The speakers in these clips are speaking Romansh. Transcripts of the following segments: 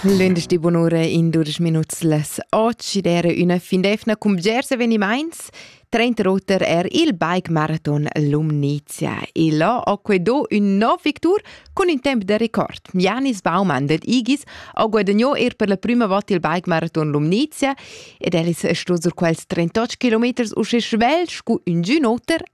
Lunedì bunura in dudesch minuts las otg der üna fin d'efna cun bgers evenimaints. Trentroter er il bike marathon Lumnizia e là ho que do ün nov victur cun ün temp da record. Janis Baumann dad Igis ha guadagno er per la prima volta il bike marathon Lumnizia ed el es sto sur quels 38 km uschè svelt scu ün giun oter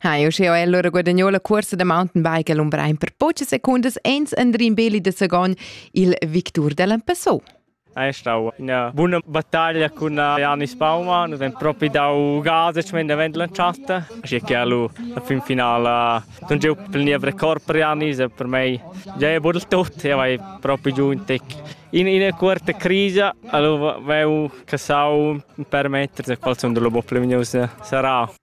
Ha io sche allora guadagno la corsa da mountainbike a Lumbrein per poche secundas ens Andrin Beli de Sagon, il victur dell'An Passò. È stata una buona battaglia con Janis Baumann, nous avem propi dau gases men davent lanciata, așa che alu la fin finala non geu plenia record per Janis, per me già è buono tutto, io vai propi giù in tec. In, in quarta crisi alu veu che sau permettere qual sono le bo più vignosi sarà.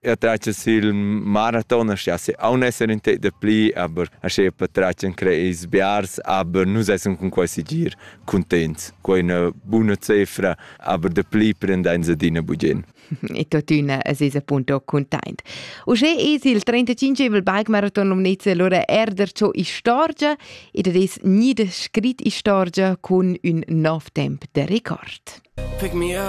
Ja trace sil maraton, ja se aun esser in tec de pli, aber asche per tracen creis biars, aber nus essan cun quei sigir contents. Quei è una buona cifra, aber de pli prendein se dina bugien. E tuttina es es appunto content. Uschè es il 35 bike-maraton Lumnezza allora erder ciò istorgia ed es nie de scrit istorgia cun un nov temp de rekord. Pick me up